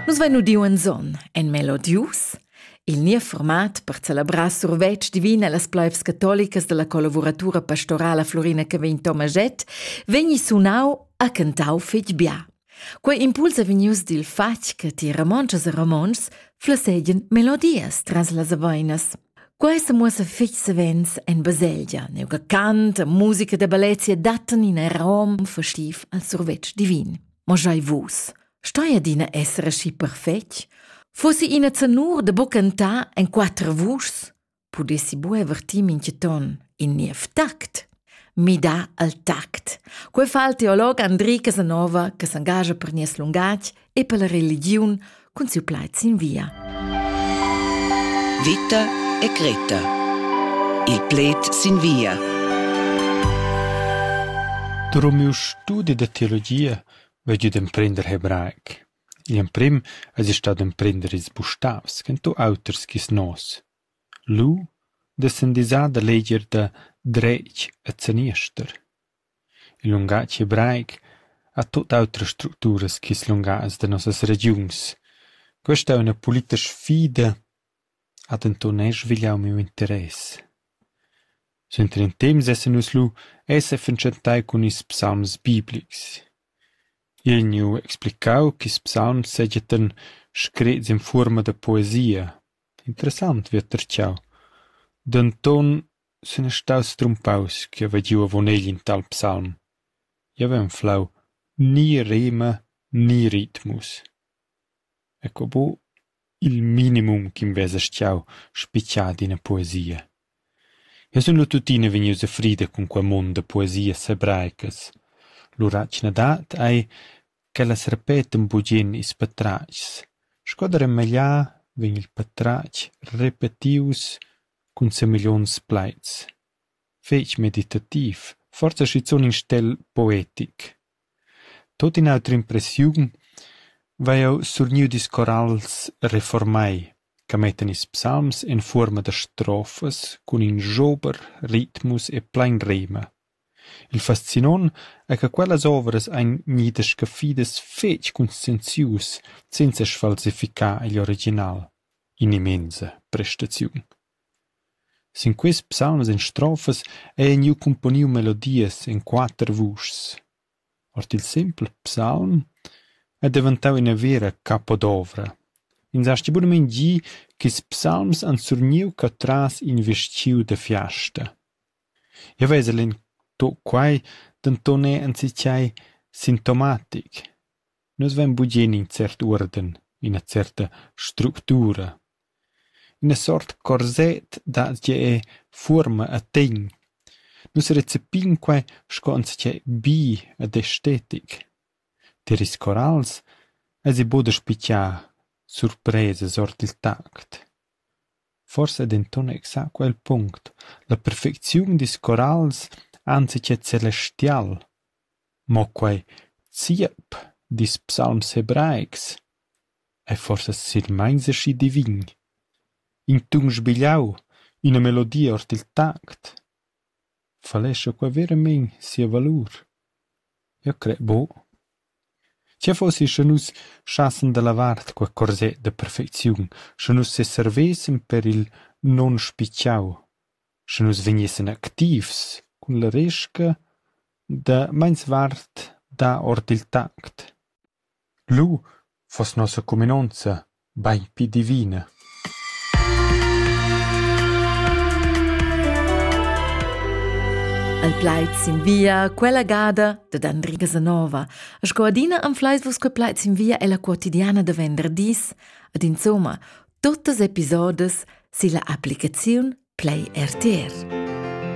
Nus vein udiu en zon, en melodius, il niev format per celebrar survetsch divin allas pleivs catolicas dalla collavuratura pastorala Florina Cavegn Tomaget, vegni sunau a cantau fetg bia. Quei impuls è vegnius dil fatg che ti ramontschas e ramonts flessegien melodias tras las aveinas. Quei semuossa fetg savens en baselgia, neuca cant e musica da bellezia dattan in arom festiv al survetsch divin. Ma schai vus, stoi adina esser aschi perfetg? Fossi ina zanur da buca cantar en quater vuschs, pudessi buca vertir mintga ton in niev tact. Mida al tact. Quei fa il teolog Andri Casanova, che s'engascha per nies lungatg e per la religiun cun siu plaid sin via. Vita e creta. Il pled sin via. Drum miu studi da teologia vegg ed emprender hebraic. Il emprim es ich stat emprender ils bustavs, ken tu auters gis nos. Lu, dessen disà da leger da Dretg e Zeniester. Il lungatg hebraic ha tut autras structuras ch'ils lungatgs da nossas regiuns. Questa è üna politica sfida, ha denton era svigliau miu interess. Suenter in temps essan nus lu e sefatschentai cun ils psalms biblics. Igl gniu explicau ch'ils psalms seigien screts in fuorma da poesia. Interessant, vi ha tertgau. Denton Sun ei staus strumpaus ch'jeu vai giu avon egl in tal psalm. Jeu vegn enflau ni rema ni ritmus. Ecco bu il minimum ch'invesa schau spitgar d'ina poesia. Jeu sun lu tuttina vegnius a frida cun quei mund da poesias hebraicas. L'uratgna dat ei ch'ellas repetan bugen ils patratgs. Sco da remegliar vegn il patratg repetius cun semigliuns plaids, fetg meditativ, forsa schizun in stel poetic. Tot in'autra impressiun vai jeu surgniu dils corals reformai, che mettan ils psalms en fuorma da strofas cun in jober, ritmus e plein rema. Il fascinont è che quellas ovras ein gnidas scaffidas fetg conscienzius senza sfalsificar igl original. In'immensa prestaziun. Sin quest psalms en strofas ei gnü cumponiu melodias en quater vuschs. Ord il sempel psalm è deventau ina vera capodovra. Ins hasti bunamein gi ch'ils psalms han surgniu catras in vestgiu da fiasta. Jeu vesel in tuc quai denton era enzatgei sintomatic: nus vein bugen in cert uorden, ina certa structura, ina sort corset da tgei fuorma e tegn. Nus recepin quei sco enzatgei bi ed estetic. Tier ils corals eisi buca da spigiar surpresas ord il tact. Forsa è denton exacu el punct: la perfecziun dils corals enzatgei celestial. Mo quei ziep dils psalms hebraics ei forsa silmeins aschi divin. In tun sbigliau, ina melodia ord il tact falescha qua veramein sia valur. Eu cret buc. Tgei fossi sche nus schassen da lavar quei corset da perfecziun, sche nus seservessen per il nunspitgau, sche nus vegnessan activs cun la resca da meinsvart dar ord il tact. Lu foss nossa cuminonza Bein pli divina. El plaid sin via, quella gada dad Andriga Zanova. Sco adina anfleis vus quei plaid sin via ella quotidiana da venderdis, ed insomma, tuttas episodes silla applicaziun Play RTR.